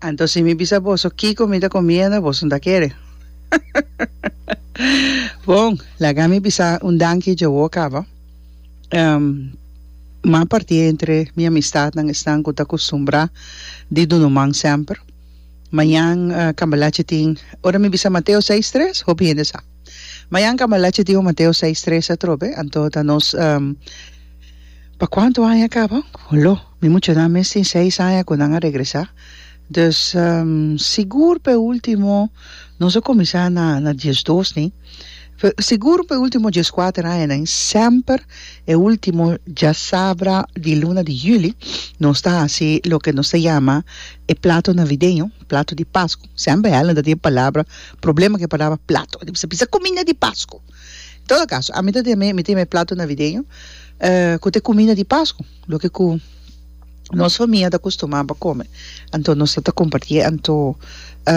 Anto si mi bisa boso kiko mi ta comiendo boso no ta kere. Bon, laga mi bisa un danki dje wou caba. Um, mas parti entre mi amistadnan esnan cu ta custumbra di dunu man semper. Mañan, uh, cambalachi tin, ora mi bisa Mateo seis tres, hopi hende sa. Mañan cambalache tin un Mateo seis tres atrobe, anto ta nos pa cuanto aña caba? Lo, mi muchanan mes tin seis aña cu nan a regresa, dus sigur pe ultimo nos a cuminsa na na diesdos ni, sigur pe ultimo diescuater aña nen semper e ultimo diasabra di luna di juli nos ta haci loke nos ta yama e plato navideño, plato di pascu. Semper Helen ta tin e palabra problema ku e palabra plato. Di bisa bisa kuminda di Pasku. En todo kaso, ami ta tin mi tin mi plato navideño ku ta e kuminda di Pasku, loke ku nos famia ta kustumá pa kome. Anto nos ta ta kompartí e anto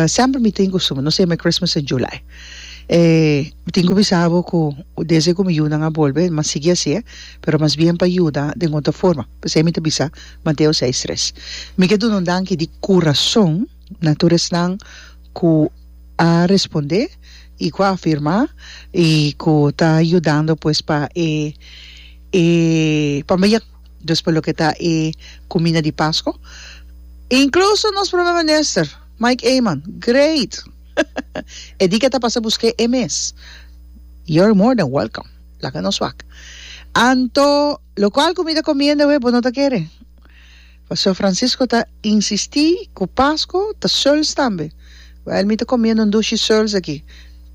semper mi tin kustumber, nos ta yama e Christmas in July. E mi tin ku bisa bo ku desde ku mi yunan a bolbe mi a sigui hasié, pero mas bien pa yuda den otro forma. P'esei mi ta bisa Mateo seis tres. Mi ke dun'e un danki di kurason. na tur esnan ku a respondé i ku a afirmá i ku ta yudando pues pa e e pambayek dus pa loke ta e kuminda di Pasko inkluso nos Prome Minister Mike Eman great e di ke ta pasa busk'é e mes you're more than welcome laga nos wak anto lokual kumida komiendo e bo no ta kere. Pastor Francisco ta insisti cu Pasco ta Seuls tambe. Wel, mi ta comiendo un dushi Seuls aki,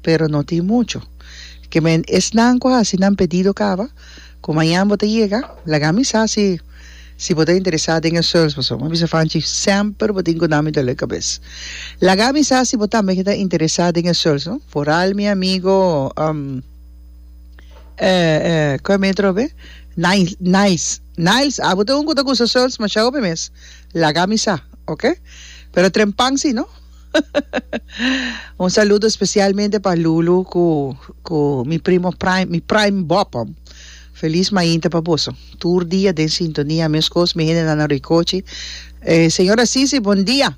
pero no tin mucho. Kimen esnan cu haci nan pedido caba, cu mañan bo ta yega, laga mi sa si si bo ta interesa den e Seuls, pasobra mi a bisa Fanchi semper bo tin cu dami dolor cabes. Laga mi sa si bo tambe ta interesa den e Seuls, no? Foral mi amigo, um, eh, eh, cu e metro be? Nice, Nice. Niles, Abo ta un cu ta gusta Seuns mashao hopi mes. Laga mi sa, ok? Pero trempan si no. Un saludo specialmente pa Lulu cu mi primo Prime, mi Prime Bopom. Feliz mainta pa boso. Tur dia den sintonia, mescos mi hende na nan roikochi. Señora Sisi, bon dia.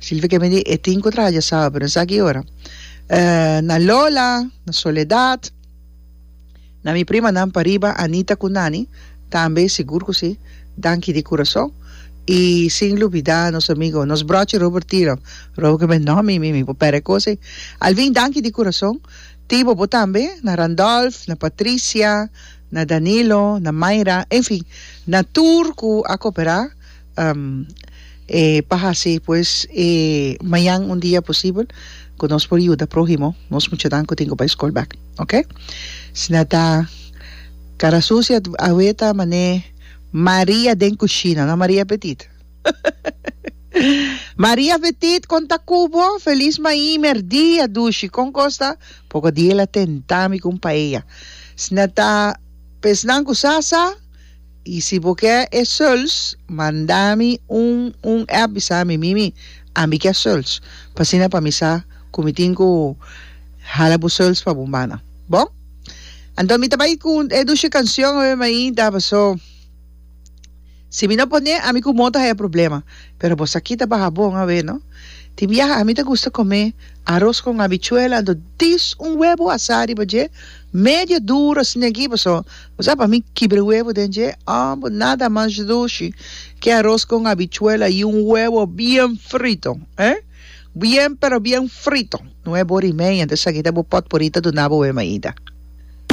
Silvia ke bini e tin ku traha dja sabe pero no sa ki ora na Lola na Soledad na mi primanan pariba Anita ku Nani tambe sigur ku si danki di kurason i sin lubida nos amigo nos brochi Robert Tiro Robert ke ben no mimi mi por pere e kos ei Alvin danki di kurason tin bobo tambe na Randolph na Patricia na Danilo na Mayra en fin na tur ku a kopera. E pa hasi pues e mañan un dia posibel ku nos por yuda próhimo, nos muchanan ku tin ku bai skol bèk, oke? Si nan ta kara susia awe ta man'é Maria den kushina, no Maria Petit. Maria Petit kon ta ku bo? Feliz maimer dia dushi, kon kos ta? Poko dia el a tentá mi ku un paella. Si nan ta pesnan ku sa sa? Y si bo ke e suls, manda mi un un app bisa mi, Mimi, ami ke suls, pa asina pa mi sa ku mi tin ku hala bo suls pa bo mana. Bon, anto mi ta bai ku e dushi kansyon awe mainta, paso si mi no pone, ami ku Mota haya problema. Pero bo sa ki ta baha bon awe, no? Tin biaha ami ta gusta kome aros kon habichuela, anto dis un webo asá riba dje, medio duro asina aki, paso Bo sa pa mi kibre webo den dje ambo nada mas dushi ke aros con habichuela y un webo bien frito he bien pero bien frito no he bo rimei antes sa kita bo pot por ita duna bo wema ita.